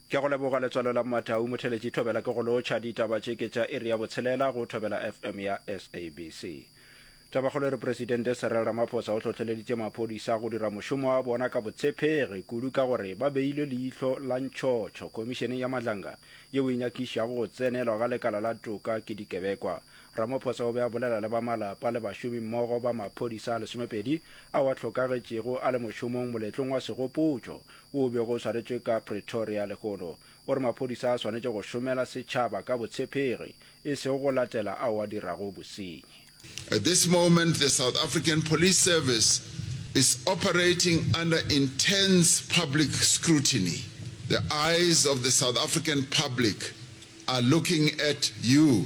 Ke go leboga letswalo la Mmatau Motheletši Thobela ke go lotšha ditaba tše ke tša iri ya botshelela go Thobela FM ya SABC. Tabakgolo e re Presidente Cyril Ramaphosa o hlohleleditše maphodisa go dira mošomo wa bona ka botshepegi kudu ka gore ba beile leihlo la ntšhotšho Khomišeneng ya Madlanga yeo e nyakišago go tsenelwa ga lekala la toka ke dikebekwa Ramaphosa o be a bolela le ba malapa le bašomi mmogo ba maphodisa a lesomepedi ao a hlokagetšego a le mošomong moletlong wa segopotšo wo o bego o swaretšwe ka Pretoria lehono. O re maphodisa a swanetše go šomela setšhaba ka botshepegi e sego go latela ao a dirago bosenyi. At this moment the South African Police Service is operating under intense public scrutiny. The eyes of the South African public are looking at you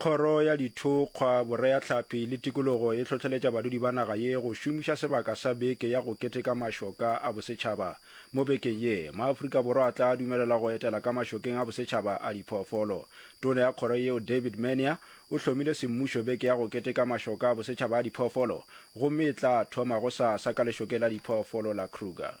Kgoro ya Dithokgwa, Boreatlhapi le Tikologo e hlohleletša badudi ba naga ye go šomiša sebaka sa Beke ya go Keteka Mašoka a Bosetšhaba. Mo bekeng ye, maAfrika Borwa a tla dumelelwa go etela ka mašokeng a bosetšhaba a diphoofolo. Tona ya kgoro yeo David Mania o hlomile semmušo Beke ya go Keteka Mašoka a Bosetšhaba a Diphoofolo gomme e tla thoma gosasa ka lešokeng la diphoofolo la Kruger.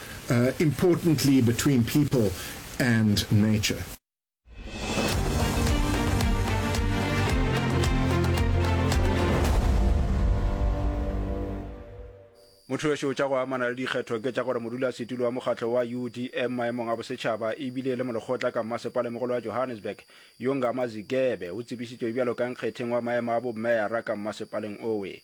importantly between people and nature. mothoweso tša go amana le dikgetho ke tša gore modulasetulo wa mokgatlo wa udm maemong a bosetšhaba ebile le molekgotla ka mmasepalemogolo wa johannesburg yonga mazigebe o tsebišitšwe bjalo ka nkgetheng wa maemo a bommeara ka mmasepaleng owe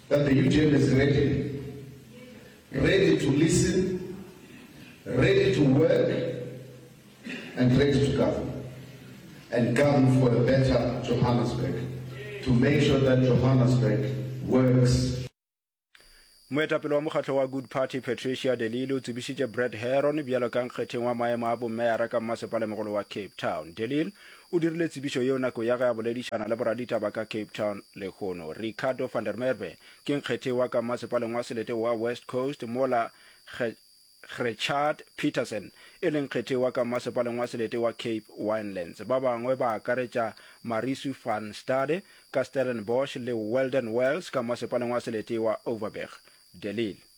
That the UDM is ready, ready to listen, ready to work and ready to govern and govern for a better Johannesburg to make sure that Johannesburg works. Moetapele wa mokgatlo wa Good Party Patricia De Lille o tsebišitše Brett Herron bjalo ka nkgetheng wa maemo a bommeara ka mmasepala mogolo wa Cape Town. De Lille O dirile tsebišo yeo nako ya ge a boledišana le boraditaba ka Cape Town lehono. Ricardo van der Merwe ke nkgethi wa ka Mmasepaleng wa Selete wa West Coast mola Gretchaard Petersen e leng nkgethi wa ka Mmasepaleng wa Selete wa Cape Winelands. Ba bangwe ba akaretša Marisu van Staade ka Stellenbosch le Weldon Wells ka Mmasepaleng wa Selete wa Overberg. De Lille.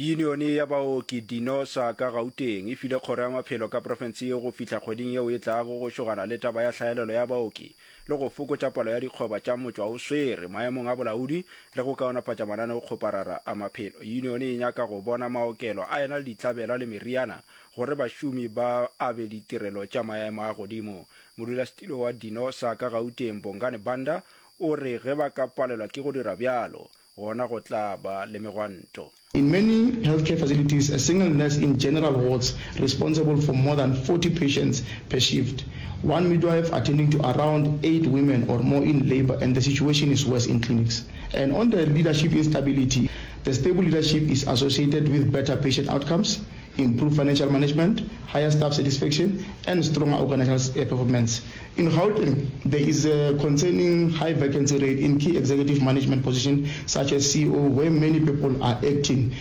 yunione ya baoki dinosa ka gauteng e file kgoro ya maphelo ka profense ye go fihla kgweding yeo e tlago go šogana le taba ya hlaelelo ya baoki le go fokotša palo ya dikgoba tša motšwa o swere maemong a bolaodi le go kaonafatša mananeo kgoparara a maphelo yunione e nyaka go bona maokelo a ena le ditlabela le meriana Gore bašomi ba abe ditirelo tša maemo a godimo. Modulasetilo wa Dino sa ka Gauteng, Bongani Banda, o re ge ba ka palelwa ke go dira bjalo, gona go tla ba le megwanto. In many healthcare facilities, a single nurse in general wards responsible for more than 40 patients per shift. One midwife attending to around eight women or more in labour and the situation is worse in clinics. And on the leadership instability, the stable leadership is associated with better patient outcomes, Improved financial management, higher staff satisfaction and stronger organisational performance. In Gauteng, there is a concerning high vacancy rate in key executive management position such as CEO where many people are acting.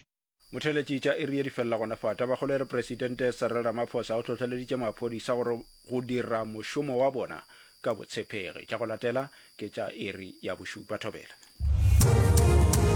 Motheeletši tša iri ye di felela gona fa. Tabakgolo e re Presidente Cyril Ramaphosa o hlohleleditše maphodisa gore go dira mošomo wa bona ka botshepegi. Tša go latela ke tša iri ya bošupa. Thobela.